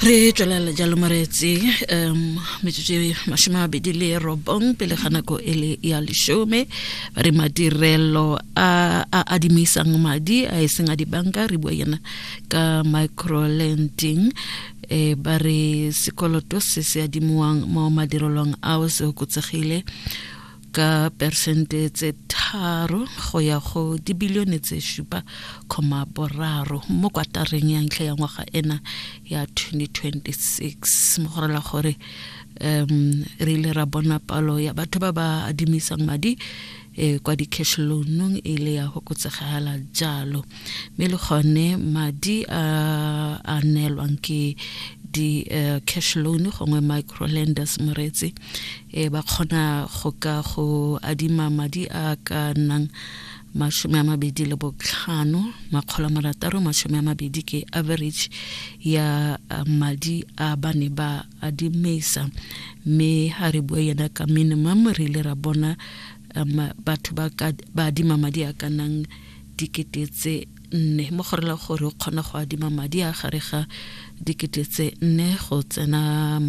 re tswelela jalo moreetse um metsotso e masome mabedi le robong pele ga nako e le ya lesome re madirelo a a adimisang madi a e seng a dibanka re bua yena ka microlending e ba re sekoloto se se adimiwang mo madirelong ao se okotsegile ka persente tse tharo go ya go dibilione tse šupa kgoma boraro mo kwatareng ya ntlha ya ngwaga ena ya 2026 mo go rela gore um re ile ra bona palo ya batho ba ba adimisang madi e kwa di-cash loanong e le ya go kotsegela jalo mme le gone madi a a neelwang ke di-cash eh, loan gongwe microlenders moreetsi e ba kgona go ka go adima madi a ka nnang masome a mabedi le botlhano makgolo a marataro masome a mabedi ke average ya madi a ba ne ba adimisa mme ga re bue yena ka minimum re ile ra bona batho ba adima madi a ka nnang dikete tse nne mo go rela gore o kgona go adima madi a gare ga dikete tse nne go tsena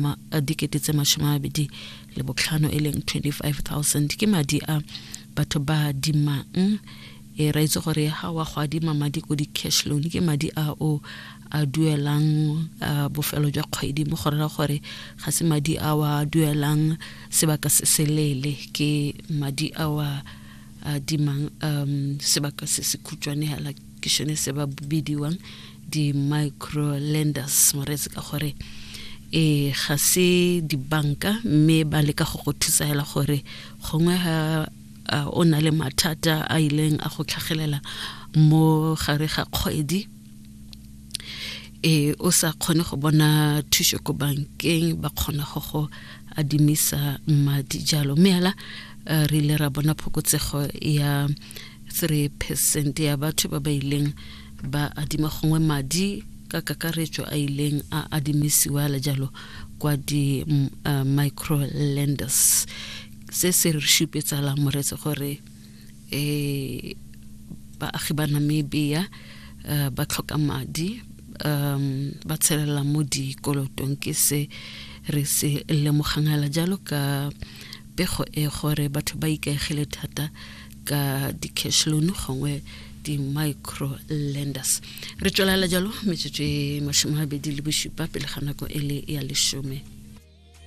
dikete tse masome a mabedi le botlhano e leng 25000 ke madi a batho ba adimang e ra itse gore ga wa go adima madi ko di-cash loan ke madi a o a duelang bofelo jwa kgwedi mo go rela gore ga se madi a wa duelang sebaka se se leele ke madi a wa a dimang um sebaka se se khutšwane hela ke šone se ba bidiwang di-micro lenders moretse ka gore e ga se dibanka mme ba leka go go thusa hela gore gongwe ga o na le mathata a ileng a go tlhagelela mo gare ga kgwedi e o sa kgone go bona thuso ko bankeng ba kgona go go adimisa madi jalo mme ala eh, re ile ra bona phokotsego ya 3 percent ya batho ba ba ileng ba adima gongwe madi ka kakaretso a ileng a adimisiwa la jalo kwa di uh, microlenders se se re šupetsala moretse gore eh baagi ba Namibia uh, ba tlhoka madi um ba tshelela mo dikolotong ke se re se lemogang hela jalo ka pego e gore batho ba ikaegile thata ka di-cash loan gongwe di-micro lenders re tswelela jalo metsotso e mashome a bedi le bosupa pele ga nako e le ya lesome